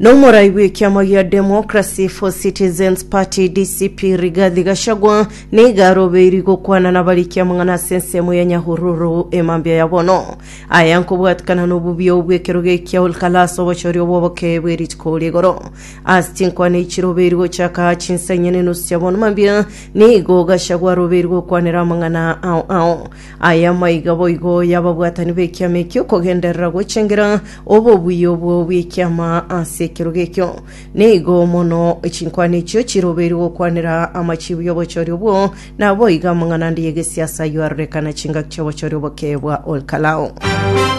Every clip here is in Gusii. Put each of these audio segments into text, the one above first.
Nomorai bw'ekiama gia Democracy for Citizens Party DCP Rigathi Gachagua niga arobeiri gokwana nabariki amang'ana ase ensemo ya Nyahururu emambia ya bono. Aya nkobwatikana nobubiao bw'ekero gekia Olkalas obochori obw'oboke bw'erituko rigoro. Ase chinkwana echi chirobeiri gochaka chinsa inye nenusu chia bono mambia nigo Gachagua arobeiri gokwanera amang'ana ao ao. Aya maiga boigo y'ababwatani b'ekiama ekio kogenderera gochengera obobuya obwo bw'ekiama ase ekerogo ekio. Nigo mono chinkwana echio chirobeirwe gokwanera amachiibu y'obochori obwo, naboigo amang'ana ande y'egesiasa ayio arorekana chingaki chi'obochori oboke bwa Olkalou.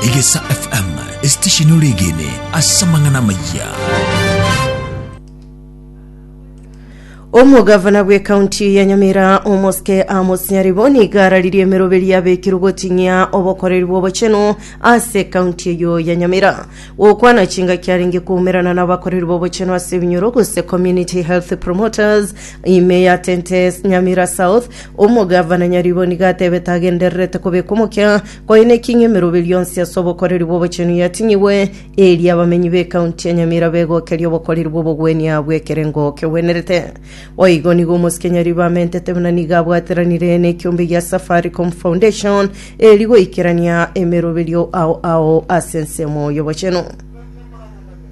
Egesa FM, esitesheni ore egene ase amang'ana amayia. omogavana bw'ekaunti ya nyamira omoske amos nyaribo nigo araririe emeroberi yabekirwe goting'ia obokoreri bw'obochenu ase ekaunti eyo ya nyamira gokwana chingaki arenge koumerana n'abakoreri b'obochenu ase ebinyoro gose community health promoters ime ya tentes nyamira south omogavana nyaribo nigo atebete agendererete kobeka omokia koine eking'e emeroberi yonsi ase obokoreri bw'obochenu yating'igwe Erio abamenyi b'ekaunti ya Nyamira begokeria obokoreri bw'obogwenia bw'ekerengo kegwenerete. Boigo nigo omosike Nyaribo amentete buna nigo abwatiranire n'ekiombe gia Safaricom Foundation eri goikerania emeroberio ao ao ase ensemo y'obochenu.